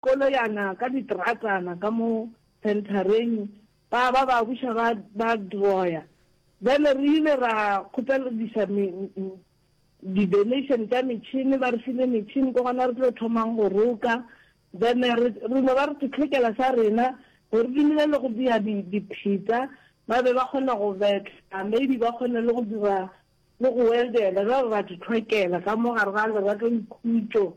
koloyana ka ditratana ka mo centereng ba ba ba buša ba ba droya bjale re ile ra kgopelediša di donation tša metšhini ba re file metšhini ko gona re tlo thomang go roka then re re no ba re titlhekela sa rena gore re dumile le go bea dipheta ba be ba kgona go betla maybe ba kgone le go dira le go weldela ba ba ba ditlhwekela ka mo gare ga lerato le khutso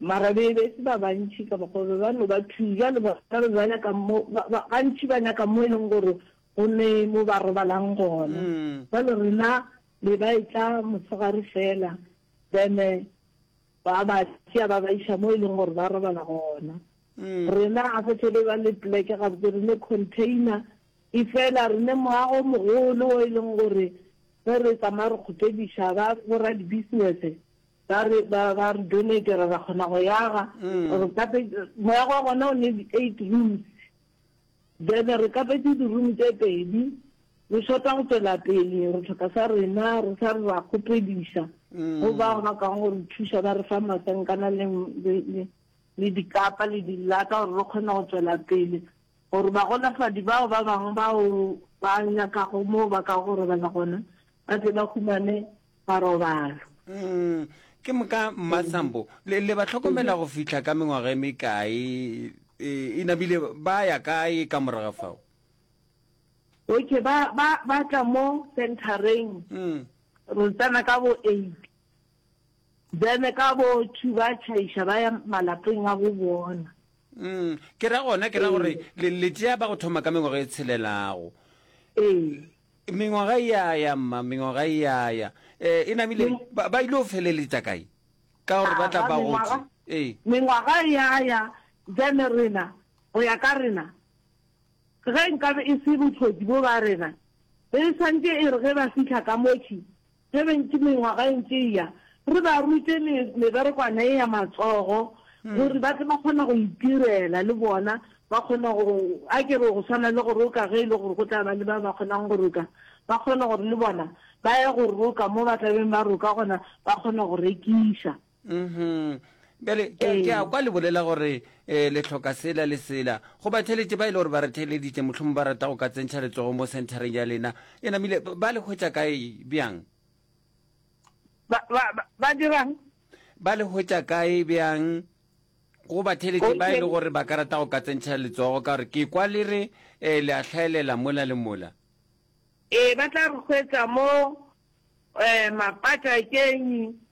Mara be be se ba bantši ka mokgwa be ba no ba two, bjale bona be ba nyaka mo, ba, ba, gantši ba nyaka mo e leng gore go ne mo ba robalang gona. Bjale rena be ba e tla motshegare fela, then ba ba tšea ba ba iša mo e leng gore ba robala gona. Rena ga se tle be ba le pleke gabotse, re ne container e fela, re ne moago o mogolo o e leng gore ge re tsamaya re kgopediša ba bo radibusiness, Ba re ba ba re donatera ra kgona go yaga. Re kape moya wa gona o ne di eight rooms. Then re kapetse di room tse pedi. Re shota go tswela pele re tlhoka sa rena re sa re ra kgopedisa. Go ba ba ka go re thusa ba re fa masankana le le le dikapa le dilata gore re kgone go tswela pele. Gore ba golafadi bao ba bangwe bao ba nyakago mo ba ka go robala gona ba tle ba humane marobalo. Mm, ke moka mmatsambo le, le ba tlhokomela go fihla ka mengwaga e mekae e, e nabile ba ya kae ka moraga fao okay ba ba ba tla mo centereng mm. re tsena ka bo eight then ka bo two ba tšhaiša ba ya malapeng a go bona mm. ke ra gona ke ra gore ee. le, le tšea ba go thoma ka mengwaga e tshelelago ee. Mengwaga e a ya, mma, mengwaga e a ya. Eh, e namile, ba, ba ile go feleletša kae? Ka gore ba tla ba gotse. Ee. Mengwaga e a ya, bjale rena, go ya ka rena, ge nkabe e se bothodi bjo ba rena, be e swantše e re ge ba fihla ka motšhi, Seventy mengwaga e ntše e ya, re ba rute me, meberekwana e ya matsogo, gore ba tle ba kgona go itirela le bona, ba kgona go, a ke re go swana le go roka, ge e le gore go tla ba le ba ba kgonang go roka, ba kgone gore le bona ba ye go roka mo ba tla beng ba roka gona, ba kgone go rekiša. mhm bjale ke a- ke a kwa le bolela gore um le tlhoka sela le sela go batheletše ba e le gore ba re theeleditše mohlhomo ba rata go ka tsentšha letsogo mo centereng ya lena e namile ba- ba le hwetša kae bjang ba ba- ba- ba dirang ba le hwetša kae bjang go batheletše ba e le Okay. gore ba ka rata go ka tsentšha letsogo ka gore ke kwa le re um le a hlaelela mola le mola ee ba tla re hwetsa mo um mapata kenyi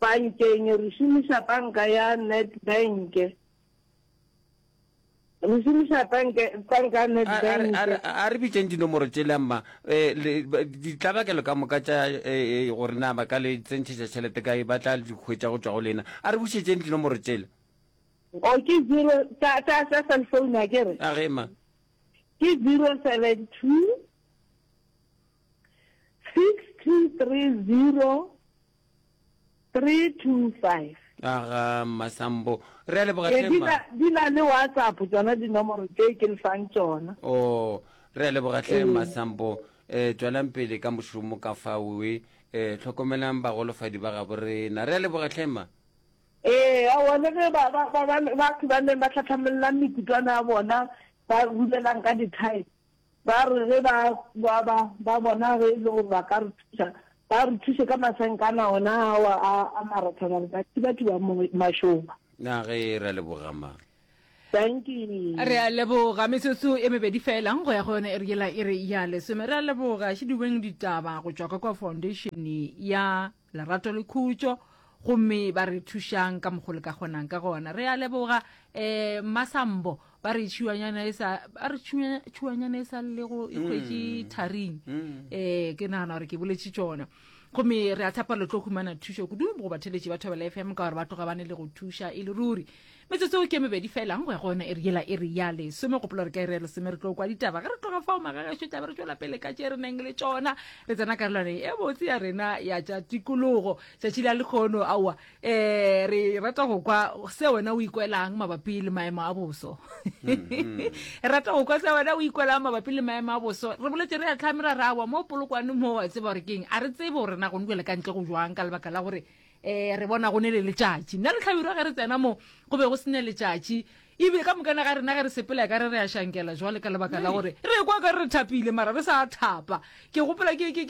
Bankeng, re šomiša banka ya Nedbank. Re šomiša banka ya Nedbank. A re bitšeng dinomoro tšele mma, ditlabakelo ka moka tša gore na ba ka le tsentšhetša tšhelete kae ba tla di hwetša go tšwa go lena. A re bušetšeng dinomoro tšele. O ke zero tsa cell phone a ke re? A ge mma. Ke zero seven two six two three zero 325. Aga Masambo. Re a leboga hle mma. Ee, di na le WhatsApp tsona dinomoro tse ke le fang tsona. Oh, re a leboga hle Masambo. Eh, tswalang pele ka mošomo ka faoe. Eh, tlhokomelang bagolofadi ba gabo rena. Re a leboga hle mma. Ee, aowa le ge ba, ba, ba, ba, batho ba neng ba tlhatlhamolelang mekutwana ya bona, ba rulelang ka dithae, Ba re ge ba ba ba ba bona ge e le gore ba ka re thuša, ba re thuše ka masenkana ona ao a a marathana re ka thibathiba mo mašoba. Na ge re a leboga ma. Dankie. Re a leboga. Metsotso e mebedi feela go ya go yone e re yela e re ya lesome. Re a leboga Šidubeng Ditaba go tšwa ka kwa Foundation ya. Lerato le khutšo gomme ba re thušang ka mokgo le ka kgonang ka gona. Re a leboga um Masambo ba re tšhiwanyana e sa ba re tšhiwanyana e sa lego e hwetše mm. tharing um ke nagana gore ke boletše tšona gomme re a tshepa le tlo humana thušo kudu go batheletši ba thobela fm ka gore ba tloga ba ne le go thuša e le ruri Metsotso ke mebedi felang go ya go yona e re yela e re ya lesome gopola re ka ere ya lesome re tlo kwa ditaba ge re tloga fao magagešo tlabe re tšwela pele ka tše re neng le tšona re tsena karolwaneng e botse ya rena ya tša tikologo tšatši la lekgono aowa um re rata go kwa se wena o ikwelang mabapi le maemo a boso mm-hmm. re rata go kwa se wena o ikwelang mabapi le maemo a boso re boletse re ya tlhame ra rawa mo polokwane mo wa tseba gore keng a re tsebe gore na gone jale ka ntle go jwang ka lebaka la gore um re bona go ne le letšatši nna le hlabirwa ge re tsena mo go be go se ne letšatši ebile ka mokana ga rena ge re sepela ka re re a shankela jwale ka lebaka la gore re kwa ka re re thapile mara re sa thapa ke gopola ge ke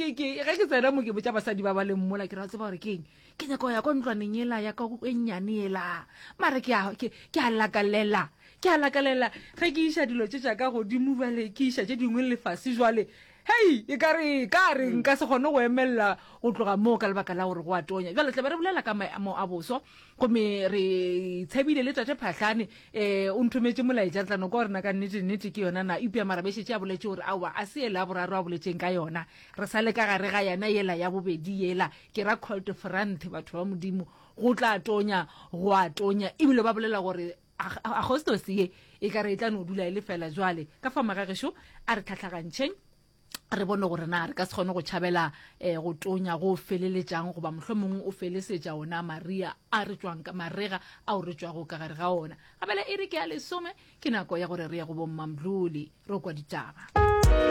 tsena mo ke botsa basadi ba ba leng mola ke ra tseba gore ke eng ke nyako ya kwa ntlwaneng ela ya ka e nnyane ela mara ke a lakalela ke a lakalela ge ke iša dilo tse tša ka godimo jale ke iša tse dingwe lefase jwale Hei! E ka re, ka re, nka se kgone go emelela go tloga moo ka lebaka la gore go a tonya. Bjale, tla be re bolela ka maemo a boso, gomme re tshebile le Tate Phahlane. Um, o nthometše molaetša, re tla no kwa gore na ka nnete, nnete ke yona na. Eupša mara be šetše a boletše gore aowa, a se yela ya boraro a boletšeng ka yona. Re sa le ka gare ga yana, yela ya bobedi yela, ke ra Colt Franthe, batho ba Modimo. Go tla tonya, go a tonya. Ebile ba bolela gore. agostosi ye e ka re e tla no dula e le fela jwale ka fa magagešo a re tlhatlhagantšheng re bone gore na re ka se kgone go tšhabela um eh, go tonya go feleletšang goba mohlho mongwe o felesetša ona maria a re tswang ka marega ao re tswago ka gare ga ona gabela e re ke ya lesome ke nako ya gore re ye go bommamdlole ro kwa ditaba